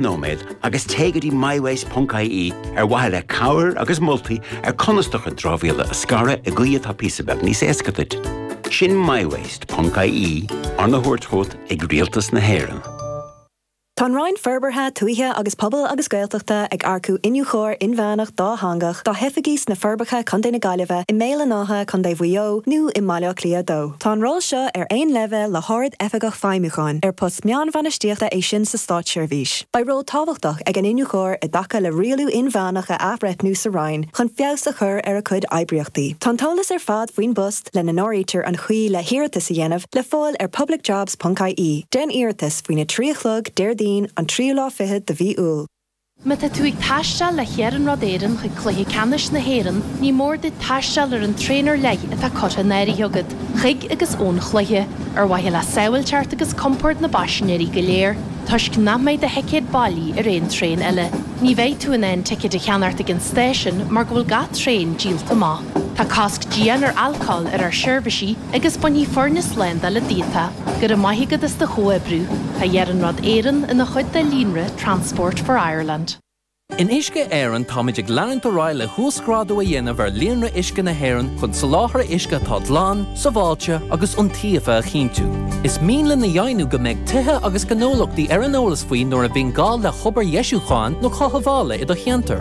nóiméad agus téigh go dtí MyWaste.ie ar mhaithe le cabhair agus moltaí ar conas do chuid dramhaíola a scaradh i gcaoi atá píosa beag níos éasca duit. Sin MyWaste.ie, arna thabhairt chugat ag Rialtas na hÉireann. Tá an Roinn Forbartha Tuaithe agus Pobail agus Gaeltachta ag earcú Iniúchóir Inmheánach Dátheangach dá hoifigí sna Forbacha, Co. na Gaillimhe, i mBéal an Átha, Co. Mhaigh Eo, nó i mBaile Átha Cliath 2. Tá an ról seo ar aon leibhéal le hArd-Oifigeach Feidhmiúcháin, ar post meánbhainistíochta é sin sa státseirbhís. Beidh ról tábhachtach ag an Iniúchóir i dtaca le rialú inmheánach a athbhreithniú sa Roinn chun feabhas a chur ar a cuid oibríochtaí. Tá an t-eolas ar fad faoin bpost, lena n-áirítear an chaoi le hiarratas a dhéanamh, le fáil ar publicjobs.ie. Déan iarratas faoina 3 a chlog Déardaoin, an tríú lá fichead de mhí Iúil. Má tá tú ag taisteal le hIarnród Éireann chuig Cluiche Ceannais na hÉireann, ní mór duit taisteal ar an traein ar leith atá curtha in áirithe agat chuig agus ón gcluiche, ar mhaithe le sábháilteacht agus compord na bpaisinéirí go léir, toisc nach mbeidh do thicéad bailí ar aon traein eile. Ní bheidh tú in ann ticéid a cheannacht ag an stáisiún mar go bhfuil gach traein díolta amach. Tá cosc dian ar alcól ar ár seirbhísí agus bainfidh foirne slándála díot é. Go raibh maith agat as do chomhoibriú. Tá Iarnród Éireann ina chuid de líonra Transport for Ireland. In Uisce Éireann táimid ag leanúint ar aghaidh le huasghrádú a dhéanamh ar líonra uisce na hÉireann chun soláthar uisce atá glan, sábháilte agus iontaofa a chinntiú. Is mian linn a dheimhniú go mbeidh tithe agus gnólachtaí ar an eolas faoi nuair a bhíonn gá le hobair dheisiúcháin nó chothabhála i do cheantar.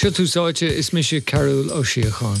Seo Tús Áite, is mise Cearbhall Ó Síocháin.